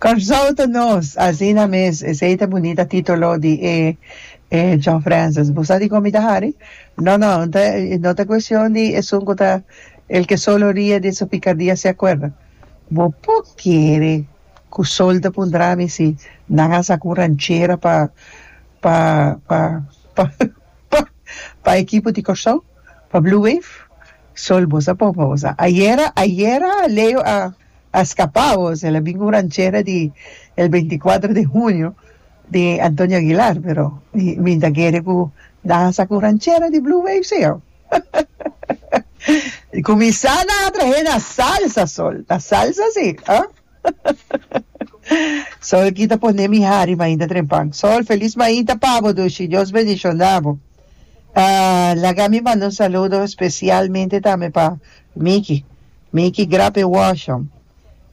Kòrsou ta nos! Asina mes, esei ta bunita títolo di e e John Francis. Bo sa di kon mi ta hari? No, no, no ta no ta kuestion di esun ku ta el ke solo rie di su pikardia se akuerda. Bo por kere ku sol ta puntra mi si nan a saka un ranchera pa pa pa pa pa ekipo di Kòrsou? pa Blue Wave sol bos a por pa bos a ayera ayera Leo a a scapa bos el a bin un ranchera di el beinti cuatro de hunio di Antonio Aguilar pero mi mi ta kere cu nan a saca un ranchera di Blue Wave si ho cuminsa nan a trahe na salsa sol na salsa si ha. Sol a kita pone mi hari mainta trempan. Sol feliz mainta pabo dushi Dios bendicionabo ah laga mi manda un saludo specialmente tambe pa Micky Micky grap e washon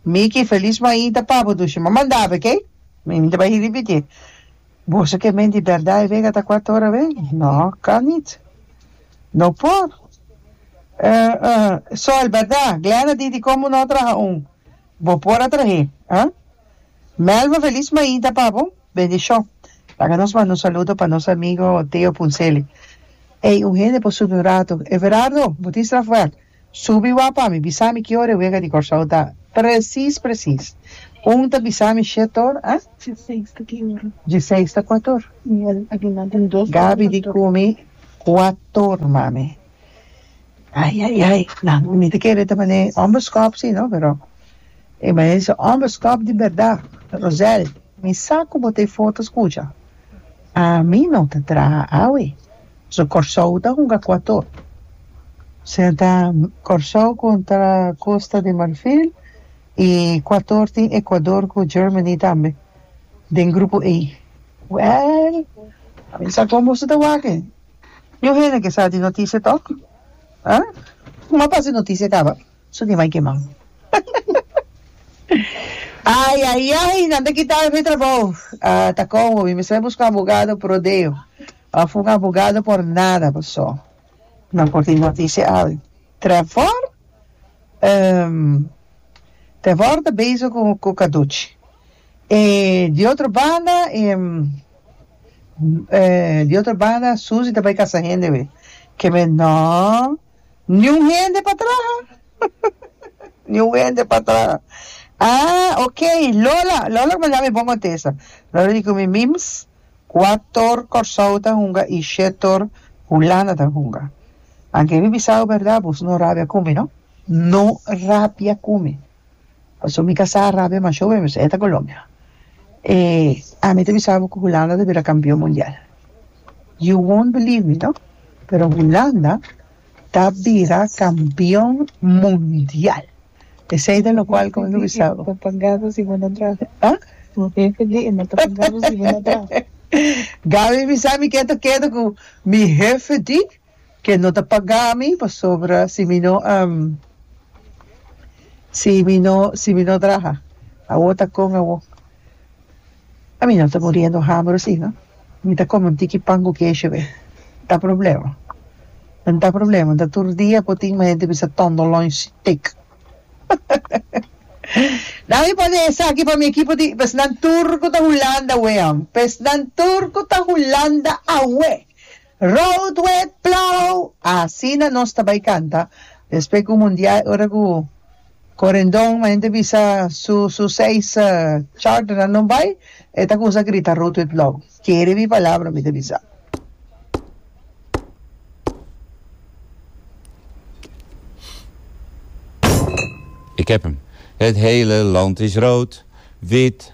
Micky feliz mainta pabo dushi m'a manda be key mi ta bay ripiti boso ke men di berdad e wega ata cuatro ora wei no kan niet no por eh eh Sol berdad Glenda di di como no traha un Bo por a trahe, ha? Melba Feliz Maida pa bo. Bendishon. Laga nos manda un saludo pa nos amigo Teo Punselli. Ey, un hende por subi un rato. Everardo, bo tin straf wèk? Subi wak pa mi, bisa mi ki ora e wega di Kòrsou ta. Presis, presis. Un ta bisa mi shet or, ha? Dieseis ta ki ora. Dieseis ta kuator. Gabi di ku mi kuator, mami. Ai ai ai nan mi ta kere ta manera e homberskòp si no pero e manera si homberskòp di bèrdat Rosel mi sa ku bo ta e foto's kucha a mi no ta traha awe pasobra Kòrsou ta hunga ku ato ser ta Kòrsou kontra Kosta di Marfil i ku ato tin Ekuador ku Germany tambe den grupo e wèl a mi no sa kon boso ta wak. Yo hende ke sa di noticia tok ah kuma pasa e noticia kaba su di mai kema ay ay ay nan ta kita mi trabou ah ta komo mi mester buska abogado por rodeo of un abogado por nada paso nan por tin noticia al Trevor em Trevor ta bezig ku ku caduchi e di otro banda em. Di otro banda Susi ta bai kasa hende wei keme no niun hende pa traha niun hende pa traha ah ok Lola Lola lo manda mi bon otesa Lola di ku mi mims kua tor Kòrsou ta hunga i she tor Hulanda ta hunga anke mi bisao bèrdat bos no rabia ku mi no no rabia ku mi. Paso mi ka sa rabia mas show mi sa e ta Colombia e ami ta bisa bo cu Hulanda ta bira campeon mundial you won't believe me no pero Hulanda ta bira campeon mundial esey ta lo cual como mi ta bisa bo ah Gaby bisa mi keto keto cu mi hefe di Ke no ta pagami pasobra si mi no si mi no si mi no traha awo ta kon awo a mi no ta muriendo hamber si no mi ta kome un tiki pan ku kesho be ta problema a no ta problema no ta tur dia por tin mi hende bisa tondo lunch stik nan mi pone esaki pa mi ekipo di pesnan tur ku ta hulanda awe pesnan tur ku ta hulanda awe. Road wet plow! Asina nos ta bai canta despues cu mundial ora cu corendon mi hende bisa su su seis charternan no bai e ta cuminsa grita road wet plow kere mi palabra mi ta bisa. Ik heb hem. Het hele land is rood, wit,